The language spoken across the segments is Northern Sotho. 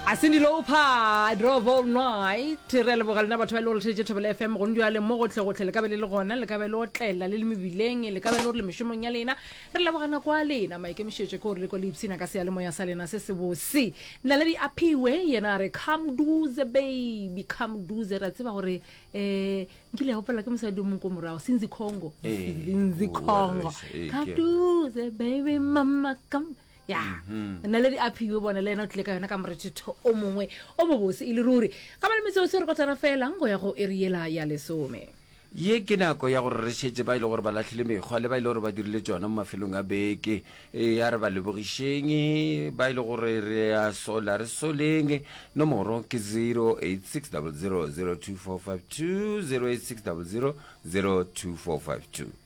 Asindi Lopa, Drove All Night, re a leboga lena batho ba e le gore tšheditše Thobela FM gone jale mo gotlhegotlhe le ka be le le gona le ka be le otlela le le mebileng le ka be le gore le mešomong ya lena re leboga nako a lena maikemišetšo ke gore le ko le ipshina ka seyalemoya sa lena se se bose naledi a phiwe yena a re come duze baby come duze re a tseba gore um nkile ya opela ke mosadi o mong ko morago sinzi congo Ee, sinzi o- o congo rese, ee, come ke- duze baby mama come ya mm-hmm. nna le di aphiwe bone le ena o tlile ka yona ka morethetho o mongwe o mobose e le ruri ga ba le metseo se re kotlana felang go ya go e re yela ya lesome ye ke nako ya gore re šetse ba e le gore ba latlhile mekgwa le ba e le gore ba dirile tsona mo mafelong a beke e ya re ba lebogišeng ba e le gore re a sola re soleng nomoro ke 086 002 452 086 002 452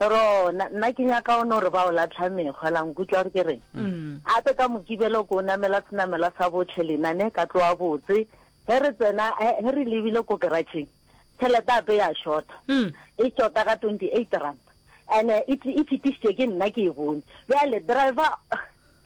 Ro, na, nna ke nyaka o no re ba o latlha mekgwa, la nkutlwa gore ke reng? Gape ka Mokibelo ko o namela senamela sa botlhe lena, ne, ka tloa botse. Ge re tsena, ge, ge re lebile ko keratšheng, tšhelete gape ya šota. E šota ka twenty eight rand. And-e e, e fetišitšwe ke nna ke e bone. Bjale driver.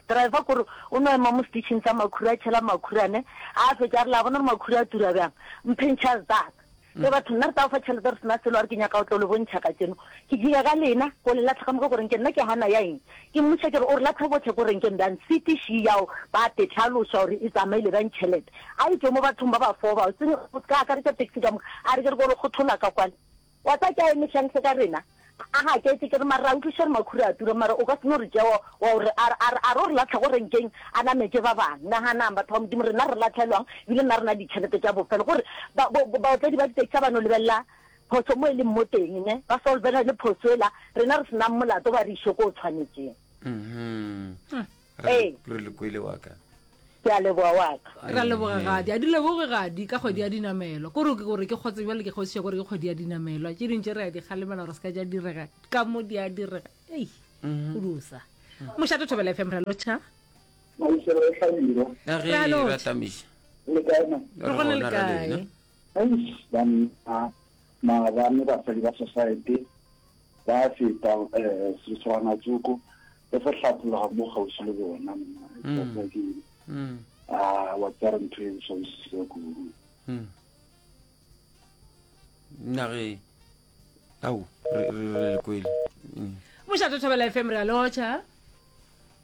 Driver kore o no ema mo stitšhing sa makhura a tšhela makhura ne a a fetša a re la bona re makhura a tura bjang mpentšhas that ge batho nna re tla go fa tšhelete re sena selo a re ke nyaka go tlo le bontšha ka tseno ke dira ka lena go le latlha ka moka koreng ke nna ke hana ya eng ke mmuša ke re o re latlha botlhe koreng ke mbjang sitiši yao ba tetlhaloša gore e tsamaile bjang tšhelete a e tšwe mo bathong ba ba foo bao se ka akaretša taxi ka moka a re ke re ko le kgothola ka kwale Wa tseba ke a eme hleng se ka rena? A gaketše, ke re, Mara ra utloša gore makhura a tura, mara o ka se no re tšea wa, wa o re, a re, a re, a re o re lahla go renkeng, a nametše ba bang. Naganang, batho ba Modimo, rena re lahlelwang, ebile nna re na le ditšhelete tša bofelo. Gore, ba, bo, bo, baotledi ba ditaxi ha ba no lebelela phošo mo e leng mo teng, ne, ba solvelane phošo ela, rena re se nang molato, ba re iše ko o tshwanetšeng. re Ee. le- re le kwele wa ka ke a leboa wa ka ra leboga gadi a di leboge gadi ka kgwedi ya dinamelwa kore ke gore ke kgotse bjale ke kgotsiša kore ke kgwedi ya dinamelwa tše dintše re ya di kgalemela gore se ka ja direga ka mo di a direga ei go dusa mošate thobela fm ra lotšha maiselo o hlabile ka ge Ra lotšha. ra tlamiša le kaena re gona le ra kae lena. eish banna maabane basadi ba society Ba feta seswanatsoko le sa hlapologa mo kgauswi le bona. Monna ke a wa tsara ntho e ntshwa bosisa kudu. Nage au re re le kwele. Mošate Thobela FM re a lotšha.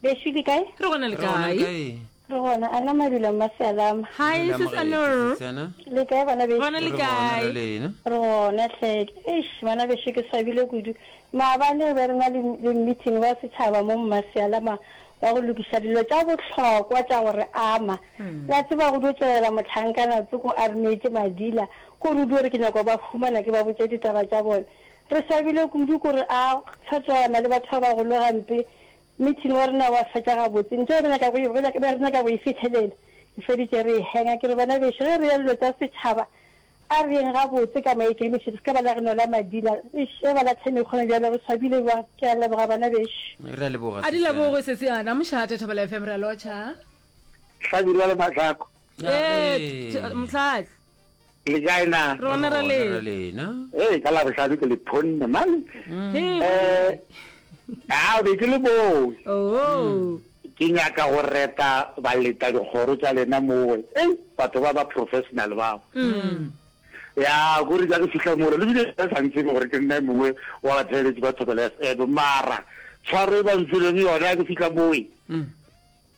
Bešo le kae? Re gona le Re gona le kae? kae? Re gona, a na madula mma Sealama? Hi, Madula sis Moreti, Anor. Sisana. Le kae bana bešo? Gona Re le gona kae? le lena. Re gona hle. Eish, bana bešo ke swabile kudu. Maabane be re na le le meeting wa setšhaba mo mma Sealama wa go lokiša dilo tša bohlokwa tša go re ama. La tseba go dio tšwelela mohlankana Tsoko a re neetše madila ko re dio re ke nyaka go ba humana ke ba botše ditaba tša bone. Re swabile kudu ko re a tshwatšwana le batho ba bagolo gampe Meeting wa rena wa fetša gabotse. Ntho yeo re nyaka go e, re nyaka, be re nyaka go e fihlelela, re feditše re e hanger. Ke re, Bana bešo, ge re ya dilo tša setšhaba, a re yeng gabotse ka maikemišetšo, se ka ba la re nola madila. Eish, ge ba lahle mekgono bjalo, re swabile bjang! Ke a leboga, bana bešo. Re a leboga, A di sister. leboge sesi a na mošate Thobela FM re a lotšha. Hlabirwa le Mahlaku. Ee, Ee. Mhlahlo. Le kae na? Rona ra le. Rona ra lena. Ee, ka la bohlano ke le phonne mane. Hey. Eh, ah, be ke le moo. Oh. Ke nyaka go reta ba leta dikgoro tša lena mowe. Ei, batho ba ba professional bao. Mm. Ya, gore ja ke fihla mola, le bile ba sa ntsebe gore ke nna mongwe wa batheeletši ba Thobela FM, mara tshwaro e ba mfilego yona ke fihla mowe. Mm.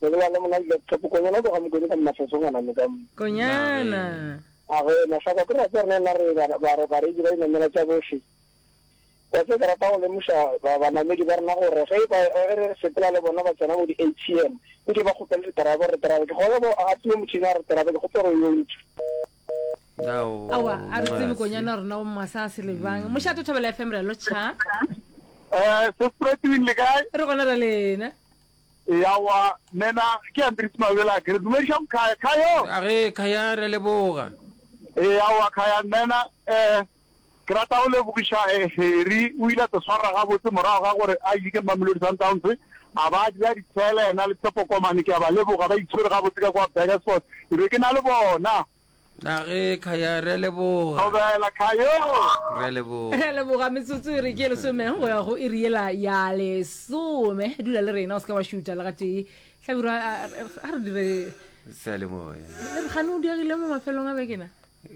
Mone wa lemona le laptop. Konyana o tloga mokone ka mafeso ngwana me ka mo. Konyana. A go ena sa kwa ke rata rena la re ba re ba re di ba inamela tša bohle. Wa tse ke rata go lemoša ba ba namedi ba rena gore ge ba re sepela le bona ba tsena mo di ATM. O ke ba kgopele re terabe re terabe ke gona go a tswe motšhini a re terabe ke kgopele go yo ntsha. Awa a re tsebe konyana rena o masa a se lebang. Mošate Thobela FM re lo cha. Eh, se spreading le kae? Re gona ra lena. Eya wa nena ke ya Ntirisi Mabela ke re dumediša go Khaya. Khayo! A re, Khaya re a leboga. Eya wa Khaya nena eh ke rata go lebogiša eh Harry o ile a se swarra gabotse morago ga gore a yike Mamelodi Sundowns a ba a dira ditsela yena le Tshepo Komane ke a ba leboga ba itshwere gabotse ka kwa Burgersfort ke be ke na le bona. Na ge Khaya re a leboga. Thobela Khayo. Re a leboga. Re a leboga metsotso e re ke lesome go ya go iri yela ya lesome dula le rena o seka wa šuta le gatee hlabirwa a a re dire seyalemoya le re gane o diegile mo mafelong a bekena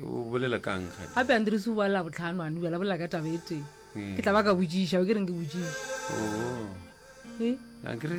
o bolela kang gape gape a ndirisi o bala botlhano a nubela bolela ka taba e tee ke tla ba ka botšiša o ke reng ke botšiša oo a kere